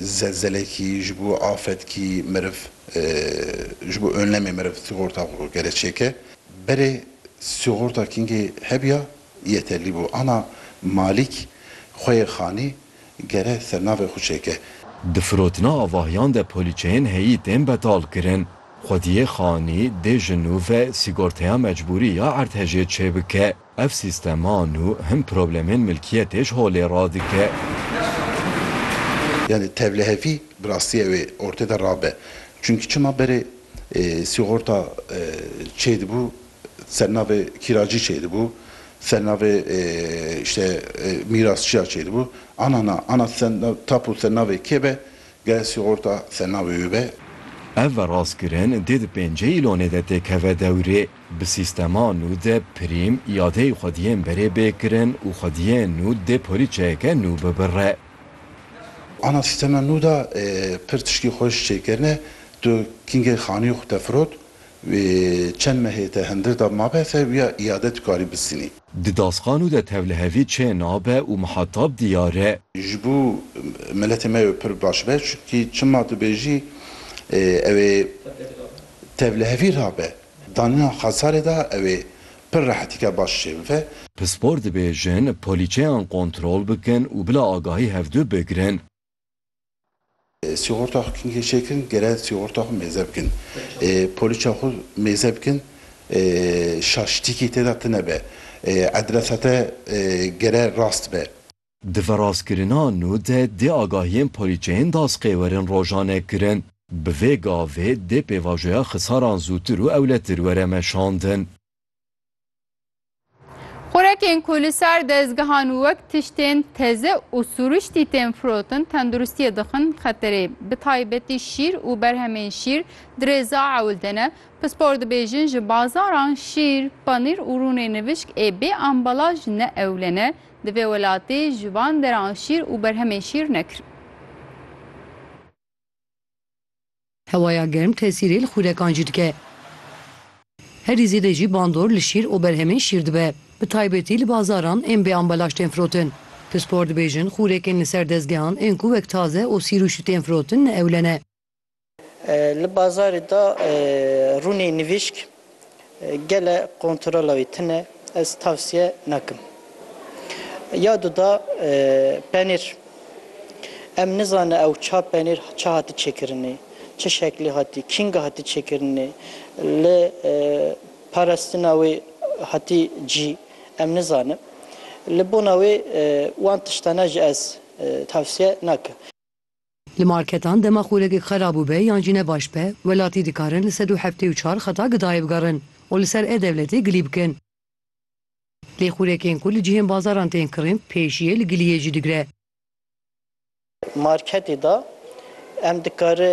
Zelzelekî ji bo afetkî meriv, ji bo önlemê meriv sîgorta xwe gere çêke. Berê sîgorta kingê hebiya yeterlî bû. Ana malîk xweyê xanî gere sernavê xwe çêke. Di firotina avahiyan de polîçeyên heyî tên betalkirin. Xwediyê xanî dê ji nû ve sîgorteya mecbûrî ya erdhejê çêbike. Ev sîstema nû him problemên milkiyetê ji holê radike. Yanî tevlihevî bi rastî ew ê ortê de rabe. Çimkî çima berê sîgorta çêdibû ser navê kîracî çêdibû, ser navê îşte mîrasçiya çêdibû. Ana na, ana tapu ser navê kê be, gere sîgorta ser navê wê be. Ev verast kirin dê di pêncê îlonê de têkeve dewrê. Bi sîstema nû de pirîm îadeyê xwediyên berê bê kirin û xwediyên nû dê polîçeyeke nû bibire. Ana sîstema nû de pir tiştî xweş çêkirine. Tu kingê xaniyê xwe te firot wê çend mehê te hindir da mabe ser wî ya îade dikarî bistînî. Di dasxa nû de tevlihevî çê nabe û mihetab diyar e. Ji bo miletê me ew pir baş be çunkî çima dibêjî ew ê tevlihevî rabe. Danîna xasarê de ew ê pir rehetîka baş şênve. Pispor dibêjin polîçeyan kontrol bikin û bila agahî hevdu bigirin. Sîgorta xwe kengê çêkirin gere sîgorta xwe mêze bikin. Polîça xwe mêze bikin şaşîtîkî tê de tine be. Edresa te gere rast be. Di viraskirina nû de dê agahiyên polîçeyên dasqêwerin rojane kirin. Bi vê gavê dê pêvajoya xisaran zûtir û ewletir were meşandin. Xurekên ku li ser dezgehan wek tiştên teze û sûriştî tên firotin tenduristiyê dixin xeterê. Bi taybetî şîr û berhemên şîr dirêza ewilde ne. Pispor dibêjin ji bazaran şîr, panîr û rûnê nivişk ê bê ambalaj ne ewlene, Di vê welatê ji van deran şîr û berhemên şîr nekirin. Hewaya germ tesîrê li xûrekan jî dike. Herî zêde jî bandor li şîr û berhemên şîr dibe. Bi taybetî li bazaran ên bê ambalaj tên firotin. Pispor dibêjin, xûrekên li ser dezgehan ên ku wek taze û sîrûşî tên firotin ne ewle ne. Li bazarê de rûnê nivîşk gele kontrola wî tune ez tavsiye nakim. Ya du de penîr em nizane ew ça penîr ça hati çêkirinê, çi şeklê hatî, kînga hatî çêkirinê, li parestina wê hatî cî em nizanim. Li bona wê wan tiştane jî ez tavsiye nakim. Li marketan dema xûrekek xerab û be yan jî ne baş be, welatî dikarin li sed û heftê û çar xeta gidayê bigerin û li ser e-dewletê gilî bikin. Lê xûrekên ku li cihên bazaran tên kirîn pêşiyê li giliyê jî digire. Marketê de em dikare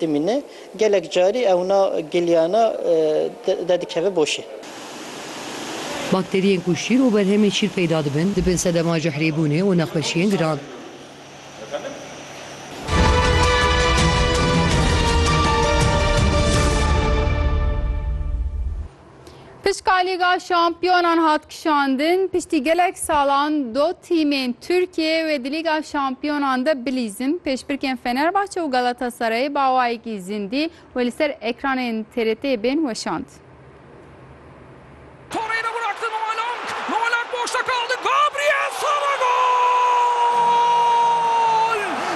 Dimîne gelek carî ewna giliyana dedikeve boşê. Bakteriyên ku şîr û berhemên şîr peyda dibin, dibin sedema cehrîbûnê û nexweşiyên giran. Pişka Lîga Şampiyonan hat kişandin, piştî gelek salan do tîmên Tirkiyeyê wê di Lîga Şampiyonan de bilîzin. Pêşbirkên Fenerbahçe û Galatasarayê bi awayekî zindî wê li ser ekranên TRT'ê bên weşand. Torreira bıraktı Noelong. Noelong boşta kaldı. Gabriel Sara gol!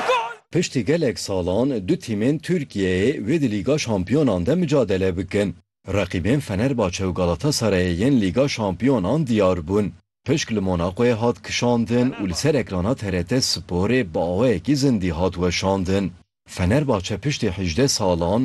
Gol! Piştî gelek salan du tîmên Tirkiyeyê wê di Lîga Şampiyonan de micadele bikin. Reqîbên Fenerbahçe û Galatasarayê yên Lîga Şampiyonan diyar bûn. Pişk li Monacoyê hat kişandin û li ser ekrana TRT Sporê bi awayekî zindî hat weşandin. Fenerbahçe piştî hejdeh salan